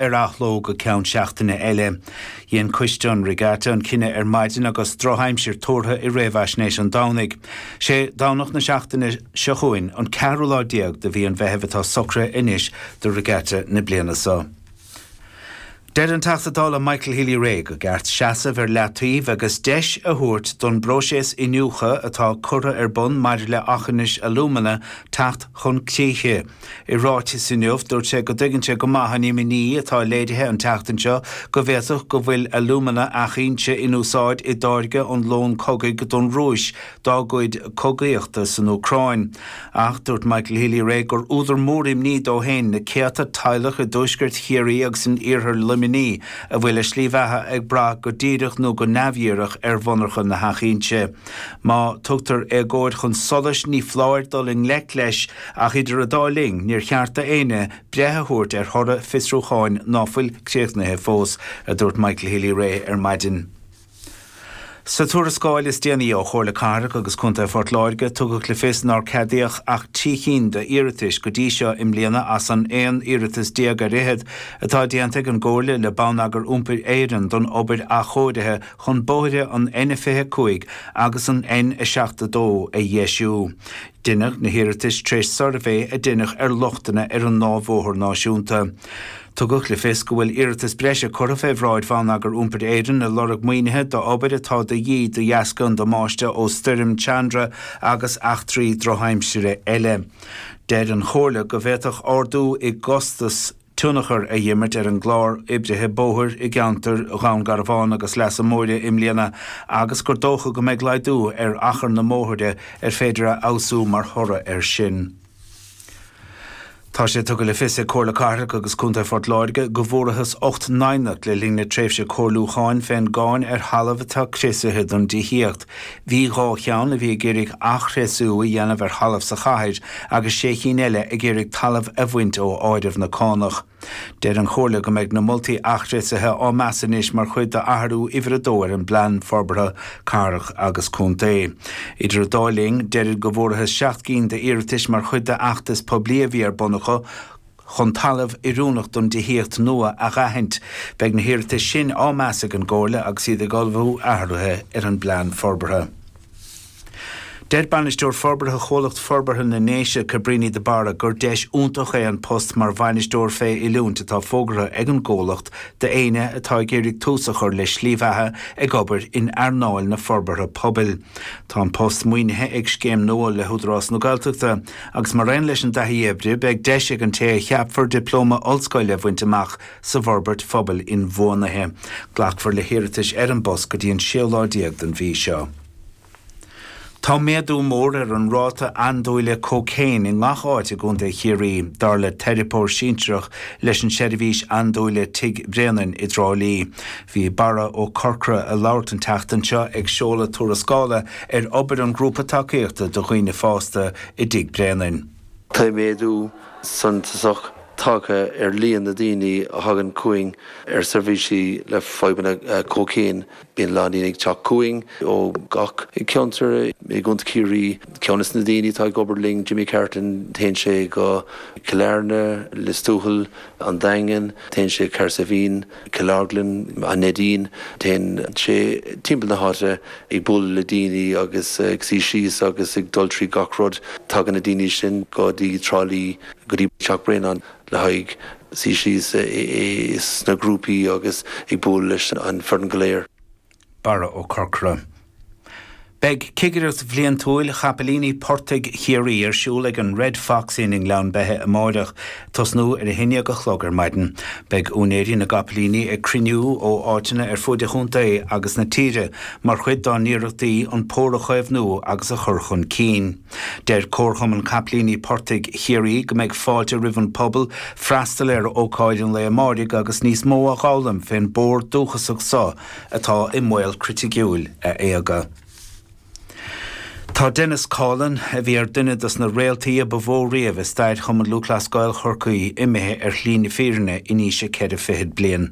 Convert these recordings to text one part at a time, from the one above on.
ar athló go ceann seachtaine eile. Dhein Coiste an Regatta an cinneadh ar maidin agus drochaimsir tuartha i réamhaisnéis an Domhnaigh. Sé Domhnach na seachtaine seo chugainn, an ceathrú lá déag de mhí an Mheithimh atá socraithe anois do Regatta na bliana so. Deir an Teachta Dála Michael Healy-Rae gur ceart seasamh ar leataobh agus deis a thabhairt don bpróiseas iniúchtha atá curtha ar bun maidir le Aughinish Alumina teacht chun críche. I ráiteas inniu, dúirt sé go dtuigeann sé go maith an imní atá léirithe an tseachtain seo go bhféadfadh go bhfuil alúmana Eachinse in úsáid i dtáirgeadh lón cogaidh don Rúis dá gcuid cogaíochta san Úcráin. Ach dúirt Michael Healy-Rae gur údar mór imní dó féin na céadta teaghlach i dtuaisceart Chiarraí agus in iarthar Luimnigh a bhfuil a slí bheatha ag brath go díreach nó go neamhdhíreach ar mhonarcha na hEachinse. Má tugtar éagóir chun solais ní foláir dul i ngleic leis, ach idir an dá linn níor cheart d'éinne breith a thabhairt ar thoradh fiosrúcháin ná fuil críochnaithe fós, a dúirt Michael Healy-Rae ar maidin. Sa tuarascáil is déanaí ó Chomhairle Cathrach agus Contae Phort Láirge tugadh le fios nár ceadaíodh ach trí chinn d'iarratais go dtí seo i mbliana as an aon iarratas déag ar fhichead atá déanta ag an gComhairle le Bonneagar Iompair Éireann don obair athchóirithe chun bóithre an N25 agus an N72 a dheisiú. Deineadh na hiarratais tar éis suirbhé a deineadh ar lochtanna ar an ndá bhóthar náisiúnta. Tugadh le fios go bhfuil iarratas breise curtha fé bhráid Bhonneagar Iompair Éireann le lorg maoinithe d'obair atá de dhíth de dheasca an damáiste ó stoirm Chandra agus eachtraí drochaimsire eile. Deir an Chomhairle go bhféadfadh ardú i gcostas na. tionchar a dh'imirt ar an gclár oibrithe bóthair i gceantar Dhún Garbhán agus Leasa Móire i mbliana agus gur dócha go mbeidh laghdú ar achar na mbóithre ar féidir a fheabhsú mar thoradh air sin. Tá sé tugtha le fios ag Comhairle Cathrach agus Contae Phort Láirge go bhfuarthas ocht n-aighneacht le linn na tréimhse comhairliúcháin fén gcáin ar thalamh atá criosaithe don dtithíocht. Bhí dhá cheann a bhí ag iarraidh athchriosú a dhéanamh ar thalamh sa chathair agus sé chinn eile ag iarraidh talamh a bhaint ó áireamh na cánach. Deir an Chomhairle go mbeidh na moltaí athchriosaithe á meas anois mar chuid d'athrú uimhir a dó ar an bPlean Forbartha Cathrach agus Contae. Idir an dá linn, deirid go bhfuarthas seacht gcinn d'iarratais mar chuid d'fheachtas poiblí a bhí ar bun acu, chun talamh oiriúnach don dtithíocht nua a dh'aithint. Beidh na hiarratais sin á meas ag an gComhairle agus iad ag ullmhú athruithe ar an bplean forbartha. Deir Bainisteoir Forbartha Chomhlacht Forbartha na nDéise, Cabríní de Barra, gur deis iontach é an post mar bhainisteoir fé oiliúint atá fógartha ag an gComhlacht d'éinne atá ag iarraidh tús a chur le slí bheatha ag obair in earnáil na forbartha pobail. Tá an post maoinithe ag scéim nua le hÚdarás na Gaeltachta. Agus mar aon leis an dtaithí oibre, beidh deis ag an té a cheapfar dioplóma ollscoile a bhaint amach sa bhforbairt phobail inbhuanaithe. Glacfar le hiarratais ar an bpost go dtí an séú lá déag den mhí seo. Tá méadú mór ar an ráta andúile cócaon i ngach áit i gContae Chiarraí, dar le teiripeoir sinsearach leis an seirbhís andúile Tigh Bréanainn i dTrá Lí. Bhí Barra Ó Corcra ag labhairt an tseachtain seo ag seoladh tuarascála ar obair an ghrúpa tacaíochta do dhaoine fásta i dTigh Bréanainn. Tá méadú suntasach tagtha ar líon na ndaoine a thagann chugainn ar seirbhísí le fadhbanna cócaon. Bíonn a lán daoine ag teacht chugainn ó gach ceantar i gContae Chiarraí. Ceann de na daoine atá ag obair linn, Jimmy Carton, téann sé go Cill Airne, Lios Tuathail, An Daingean, téann sé Cahersiveen, Killorglin, An Neidín, téann sé timpeall na háite ag bualadh le daoine agus ag suí síos agus ag dul trí gach rud. Tagann na daoine sin go dtí Trá Lí, go dtí Teach Bréanainn le haghaidh suí síos sna grúpaí agus ag bualadh leis an foireann go léir. Barra Ó Corcra. Beidh Cigireacht Bhliantúil Chapaillíní Portaigh Chiarraí ar siúl ag an Red Fox Inn i nGleann Beithe amáireach, tosnú ar a haon dhéag a chlog ar maidin. Beidh úinéirí na gcapaillíní ag cruinniú ó áiteanna ar fuaid an chontae agus na tíre mar chuid dá n-iarrachtaí an pór a chaomhnú agus a chur chun cinn. Deir Comharchumann Capaillíní Portaigh Chiarraí go mbeidh fáilte roimh an pobal freastal ar ócáid an lae amáirigh agus níos mó a dh'fhoghlaim fén bpór dúchasach so atá i mbaol criticiúil a éaga. Tá Denis Coughlan, a bhí ar duine dos na réaltaí ba mhó riamh i stair Chumann Lúthchleas Gael Chorcaí, imithe ar shlí na fírinne in aois a ceithre fichid bliain.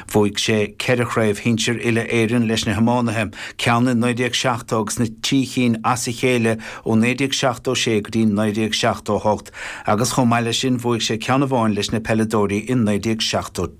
Bhuaigh sé ceithre chraobh shinsir Uile-Éireann leis na hiománaithe, ceann i 1970 agus na trí chinn as a chéile ó 1976 go dtí 1978 agus chomh maith leis sin bhuaigh sé ceann amháin leis na peileadóirí i 1973.